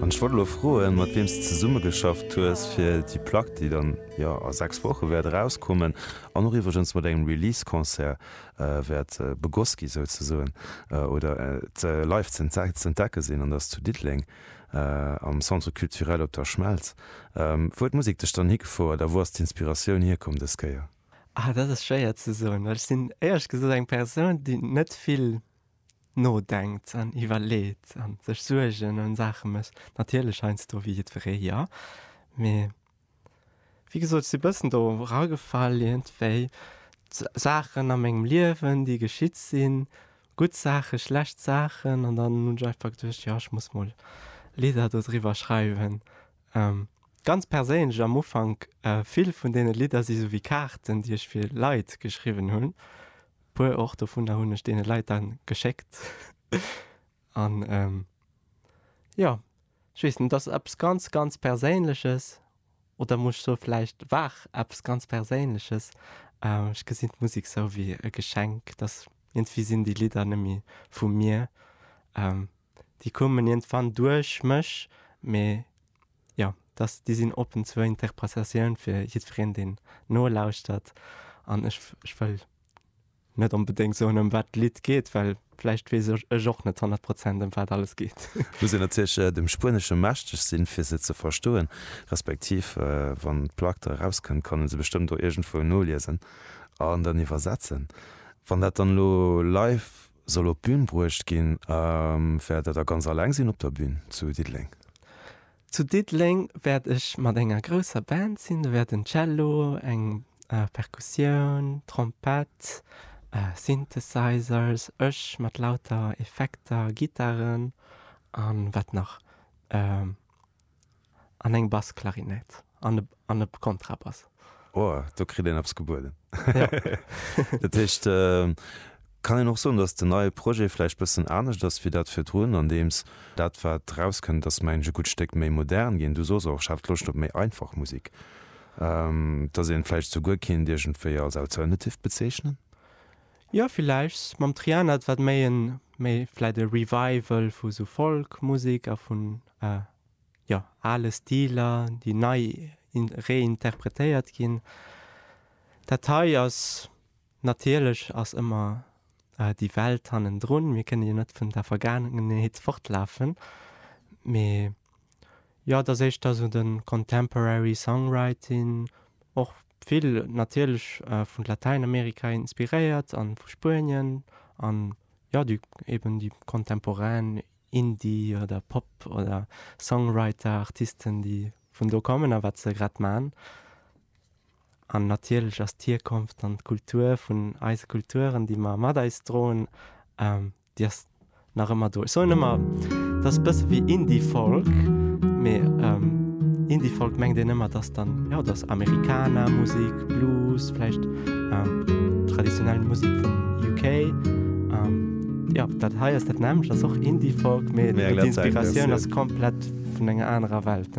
An ech wollt elo froen, mat wiem s de zesummegeschafft hues fir déi Plack, déi dann jo a 6 Woche wäert erauskommen an och iwwregens mat engem Release-Concert wäert begoss gi souzesoen oder live z'entdecke sinn, an dat ass zu Diddeleng am Centre Culturel Op der Schmelz. Wou huet d'Musek dech dann higefouert a wou ass d'Inspiratioun hierkomm dës Kéier? Ah, dat ass schwéier ze soen, well ech sinn éierlech gesot eng Persoun, déi net vill nodenkt an iwwerleet an sech Suergen ëm Saache mécht, natierlech heiansdo wéi jiddweree, jo, mee wéi gesot, ech si e bëssen do eragefall iergendwéi, Saachen a mengem Liewen, déi geschitt sinn, gutt Saachen, schlecht Saachen an dann hunn ech einfach geduecht, jo, ech muss mol Lidder dodriwwer schreiwen. Ganz perséinlech am Ufank, vill vun deene Lidder si sou wéi Kaarten, déi ech fir Leit geschriwwen hunn, Puer och dovunner hunn ech deene Leit dann geschéckt. An jo, ech weess net, et ass eppes ganz, ganz Perséinleches. Oder muss ech soe vläicht war eppes ganz Perséinleches. Ech gesinn d'Musek sou wéi e Geschenk, dass iergendwéi sinn déi Lidder net méi vu mir. Déi kommen iergendwann duerch mech, mee. jo, dass déi sinn oppen zur Interpretatioun fir jiddwereen, deen nolauschtert. An ech, ech wëll net onbedéngt soen, ëm wat d'Lidd geet, well vläicht weess ech, ech och net honnert Prozent, ëm wat alles geet. Muss een natierlech dem Spuenesche mächteg sinn, fir se ze verstoen, respektiv wann d'Plack da erauskënnt, kann ee se bestëmmt och iergendwou noliesen an dann iwwersetzen. Wann dat dann elo live soll op d'Bün bruecht ginn. Wäert Der da ganz alleng sinn op der Bün zu Diddeleng? Zu Diddeleng wäert ech mat enger grousser Band sinn. Do wäerten Cello, eng Perkussioun, Trompett, Synthesizers, ech mat lauter Effekter, Gittaren an wat nach? An eng Bassklarinett an e Kontrabass. Oh, do kritt een eppes gebueden. Dat heescht, kann een och soen, datt den neie Projet vläicht bëssen anescht ass wéi dat virdrun, andeems dat wat rauskënnt, ass mengen ech e gutt Stéck méi modern ginn. Du soss och, ech hat Loscht op méi einfach Musek. Datt een vläicht souguer kéint iergendwéi als Alternative bezeechnen? Jo villäicht mam Triana et wat méi en méi vläit e Revival vu sou Folk Musek a vun jo ale Stiler déi nei reinterpretéiert ginn. Dat hei ass natierlech ass ëmmer déi Welt hannendrun, mir kënne jo net vun der Vergaangenheet fortlafen mee. Jo, et ass éischter esou de contemporary songwriting, och vill natierlech vun Latäinamerika inspiréiert an vu Spuenien an jo déi eben déi contemporain Indie oder Pop oder Songwriter, Artisten déi vun do kommen a wat se grad man. An natierlech ass d'Hierkonft an d'Kultur vun eise Kulturen déi mer mat eis droen Déi ass nach ëmmer do. Ech soen ëmmer, dat ass e bësse wéi Indie-Folk, mee Indie-Folk mengt een ëmmer, dass dann, jo, dat ass Americana, Musek, Blues, vläicht traditionell Musek vum UK. Jo, dat hei ass dat nämmlecht, ass och Indie-Folk, mee d'Inspiratioun ass komplett vun enger anerer Welt.